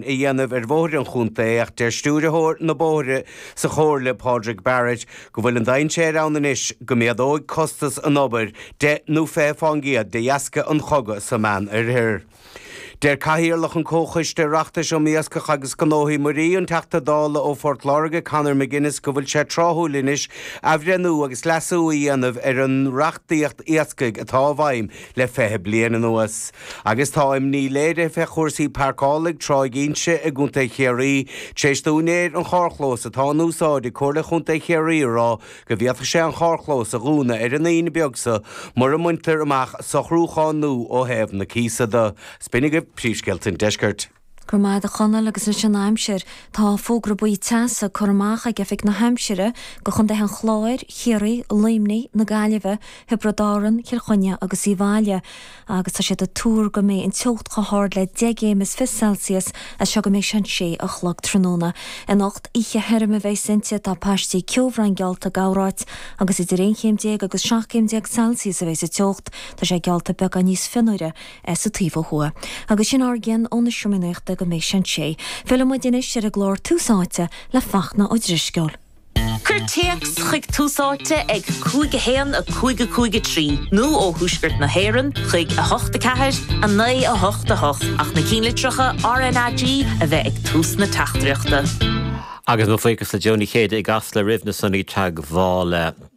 a dhéanamh ar bhóithre an chontae ach deir Stiúrthóir na Bóithre sa Chomhairle, Pádraig Barrett, go bhfuil an dainséir ann anois go méadóidh costas an obair deich nó fiche fán gcéad de dheasca an chogadh sa Meánoirthear. Deir Cathaoirleach an Comhchoiste Oireachtais um Iascach agus Gnóthaí Muirí, an Teachta Dála ó Phort Láirge, Conor McGuinness go bhfuil sé tráthúil anois athbhreithniú agus leasú a dhéanamh ar an reachtaíocht iascaigh atá i bhfeidhm, le fiche bliain anuas, agus tá imní léirithe ar chúrsaí parcála ag Tráigh Ínse i gContae Chiarraí tar éis d'úinéir an charrchlóis atá in úsáid ag Comhairle Chontae Chiarraí a rá go bhféadfadh sé an charrchlós a dhúnadh ar an Aoine beag so mura mbaintear amach socrúchán nua ó thaobh na cíosa de. Sin iad. Príomhscéalta an Deisceirt. Go raibh maith agat a Chonaill agus anois an aimsir, tá fógra buí teasa curtha amach ag Oifig na hAimsire do Chontaetha an Chláir, Chiarraí, Luimnigh, na Gaillimhe, Thiobraid Árann, Chill Chainnigh agus Uíbh Fhailí agus tá siad ag tuar go mbeidh an teocht chomh hard le 10 gcéim is fichead Celsius as seo go mbeidh sé 6 a chlog tráthnóna. Anocht, oíche thirim a bheidheas inti, tá paistí ceobhráin geallta do chorráit agus idir 11 chéim agus 17 céim Celsius a bheidheas an teocht, tá sé geallta beagán níos fionnuaire. sa taobh ó thuaidh. Agus sin ár gcion ón Seomra Nuachta go mbeidh sé an sé. Fillfidh muid anois ar an gclár Tús Áite le Fachtna Ó Drisceoil. Cuir téacs chuig Tús Áite ag 5 1 5 5 3 nó ó Thuaisceart na hÉireann chuig 8 4 9 8 8 ach na ceannlitreacha RNAG a bheith ag tús na teachtaireachta. Agus mo bhuíochas le Jó Ní Chéide i gCasla roimh na sonraí teagmhála.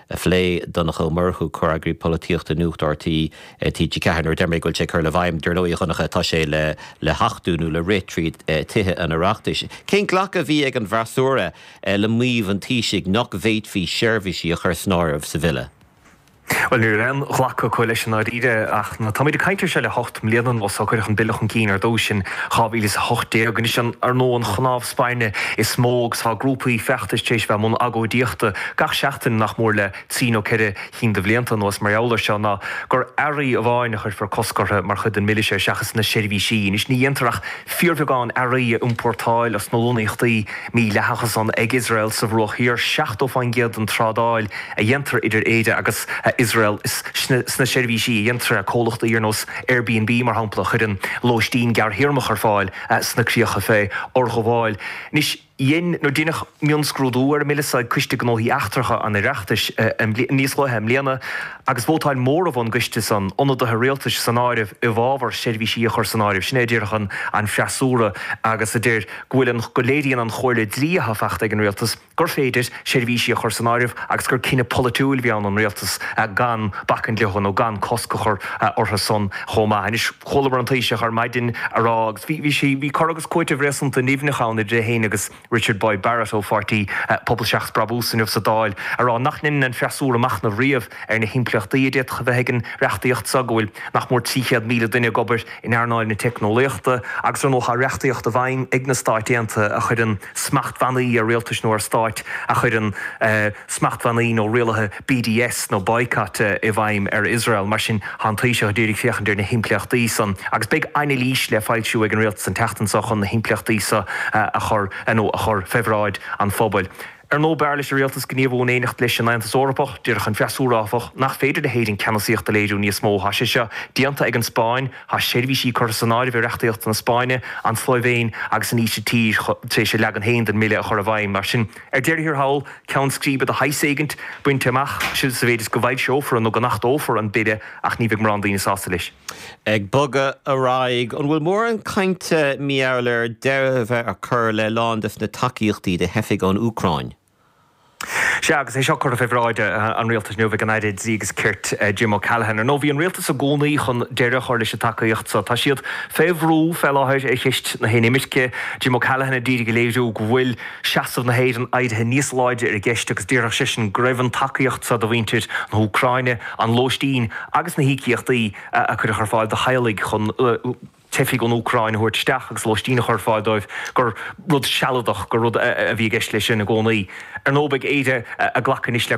a phlé. Donncha Ó Murchú, Comhfhreagraí Polaitíochta Nuacht RTÉ, TG4, Nuair a deir mé go bhfuil sé ag cur i bhfeidhm, dar ndóigh a Dhonncha, tá sé le le hachtú nó le rith tríd Tithe an Oireachtais. Cén glacadh a bhí ag an bhfreasúra le maíomh an Taoisigh nach bhféadfaí seirbhísí a chur san áireamh sa Bhille? Bhuel, ní raibh aon ghlacadh acu leis i ndáiríre ach táimíd ag caint ar seo le hocht mbliana anuas ó cuireadh an Bille chun cinn ar dtúis in 2018. Anois, an ar ndóigh an chnámh spairne is mó agus tá grúpaí feachtais tar éis bheith i mbun agóidíochta gach seachtain nach mór le trí nó ceithre chinn de bhlianta anuas mar gheall air seo ná gur earraí amháin a chuirfear cosc orthu mar chuid den mBille seo seachas na seirbhísí. Anois, ní dhéantar ach fíorbheagán earraí a iompórtáil as na lonnaíochtaí mídhleathacha san ag Iosrael sa Bhruach Thiar, 70% den trádáil a dhéantar idir Éire agus Iosrael is sna seirbhísí a dhéantar é, comhlachtaí ar nós Airbnb, mar shampla, a chuireann lóistín gearrthéarmach ar fáil, sna críocha fé fhorghabháil. Anois, dhein, nó deineadh, mionscrúdú ar an mBille so ag Coiste Gnóthaí Eachtracha an Oireachtais níos luaithe i mbliana agus vótáil móramh ón gCoiste san, ionadaithe Rialtais san áireamh, i bhfabhar seirbhísí a chur san áireamh. Sin é a déarfadh an an freasúra agus a deir go bhfuil an, go léiríonn an chomhairle dlí atá fachta ag an Rialtas, gur féidir seirbhísí a chur san áireamh agus gur cinneadh polaitiúil a bhí ann don Rialtas gan bacaint leo nó gan cosc a chur orthu san chomh maith. Anois chualamar an Taoiseach ar maidin á rá agus bhí, bhí sé, bhí cur agus cúiteamh réasúnta nimhneach ann idir é fhéin agus Richard Boyd Barrett ó pháirtí Pobal Seachas Brabús inniu sa Dáil á rá nach ndeineann an freasúra machnamh riamh ar na himpleachtaí a d'fhéadfadh a bheith ag an reachtaíocht seo, go bhfuil nach mór 300,000 duine ag obair in earnáil na teicneolaíochta agus ar ndóigh tá reachtaíocht i bhfeidhm ag na Stáit Aontaithe a chuireann smachtbhannaí ar rialtais nó ar stáit a chuireann smachtbhannaí nó rialuithe BDS nó boycott i bhfeidhm ar Iosrael. Mar sin tá an Taoiseach ag iarraidh féachaint ar na himpleachtaí san agus beidh anailís le foilsiú ag an Rialtas an tseachtain seo chun na himpleachtaí seo a chur nó a chur fé bhráid an phobail. Ar ndóigh, b'fhearr leis an Rialtas gníomhú in éineacht leis an Aontas Eorpach. Déarfadh an freasúra, áfach, gur féidir le hÉirinn ceannasaíocht a léiriú níos mó. Tá sé seo déanta ag an Spáinn. Tá seirbhísí curtha san áireamh i reachtaíocht na Spáinne, an tSlóivéin agus an Ísiltír tar éis a leagan féin den mBille a chur i bhfeidhm. Mar sin, ar deireadh thiar thall, ceann scríbe de shaghas éigint bainte amach sa mhéid is go bhfoilseofar nó go n-achtófar an Bille ach ní bheidh mórán daoine sásta leis. Ag bogadh ar aghaidh, an bhfuil mórán cainte inniu ann ar dheireadh a bheith á chur le lán des na tacaíochtaí do theifigh ón Úcráin? Sea, agus é seo curtha fé bhráid an Rialtais inniu ag an Aire Dlí agus Cirt, Jim O'Callaghan. Ar ndóigh, bhí an Rialtas i gcónaí chun deireadh a chur leis an tacaíocht so. Tá siad fé bhrú fé láthair ar cheist na hinimirce. Jim O'Callaghan ad iarraidh a léiriú go bhfuil seasamh na hÉireann éirithe níos láidre ar an gceist agus déarfadh seisean go raibh an tacaíocht so do mhuintir na hÚcráine, an lóistín agus na híocaíochtaí a cuireadh ar fáil do theaghlaigh chun teifigh ón Úcráin a thabhairt isteach agus lóistín a chur ar fáil dóibh, gur rud sealadach, gur rud a bhí i gceist leis sin i gcónaí. Ar ndóigh, beidh Éire ag glacadh anois le